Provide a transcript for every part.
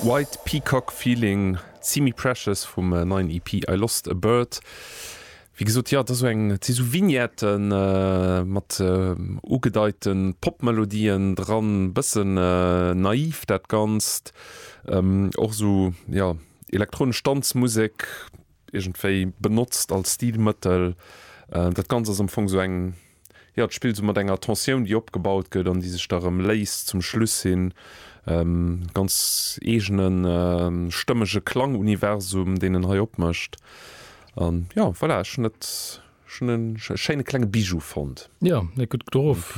White Peacock Feeling, Simi Precious vum neien EP I Lost A Bird. Wéi gesot, jo, et ass esou eng, et si sou Vignette mat ugedeite Pop-Melodien dran, e bësse naiv dat Ganzt, och esou, jo, elektronesch Danzmusek iergendwéi benotzt als Stilmëttel. Dat Ganzt ass am Fong esou eng. jo, d'Spill esou mat enger Tensioun, déi opgebaut gëtt an déi sech da erëm léist zum Schluss hin. Ganz eegene stëmmege Klanguniversum, deen en hei opmécht. An jo, voilà, ech hunn et, ech hunn e schéine klenge Bijou fonnt. Jo, leet gutt getroff.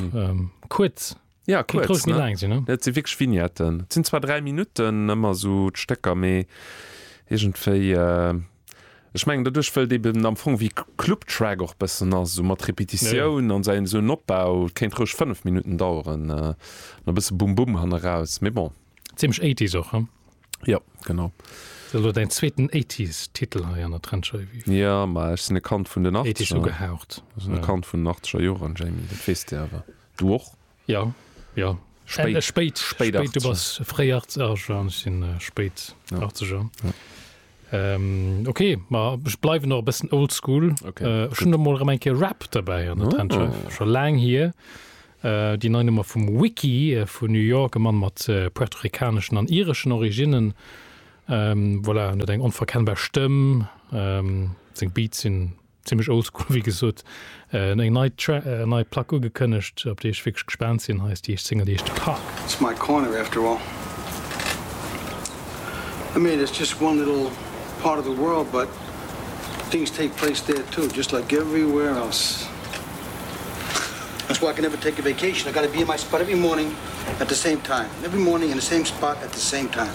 Kuerz, Ja, Kéint kuerz, roueg méi ne? laang sinn, ne? Et si wierklech Vignetten. Et sinn zwar 3 Minutten ëmmer esou d'Stécker, mee iergendwéi, ech mengen doduerch, wëll et eben am Fong wéi Club Track och bëssen ass, esou mat Repetitioun an säin esou en Opbau, et kéint roueg 5 Minutten daueren an e bësse Bum Bum hanneraus, mee bon. Zimmlech Eighties och, hm? Jo, genau. Ass elo däin zweeten Eighties Titel hei an der Trencher, Yvi? Jo, ma ech sinn e Kand vun den Eighties Achtzeger. ugehaucht, Ech sinn e ja. Kand vun den Achteger Joren, Jamie, dat weess de awer. Du och? Jo, jo. Spéit, spéit, spéit 80. Du bass fréi 80, ah jo, ech sinn spéit 80er. Ja. Ähm, ok, ma ech bleiwen och e bëssen old school. Ok. Ech hunn emol erëm eng Kéier Rap derbäi an der Trendschärft, scho laang hier. Déi nei Nummer vum Wiki vun New York, e Mann mat puerto-ricaneschen an ireschen Originnen. Voilà, en huet eng onverkennbar Stëmm, seng Beats sinn Zimlech oldschool wéi gesot. Eng nei Plack ugekënnegt op déi ech wierklech gespaant sinn. Hei ass déi éischt Single déi ech Park. It's my corner after all. I mean it's just one little part of the world but things take place there too just like everywhere else. That's why I can never take a vacation I gotta be in my spot every morning at the same time every morning in the same spot at the same time.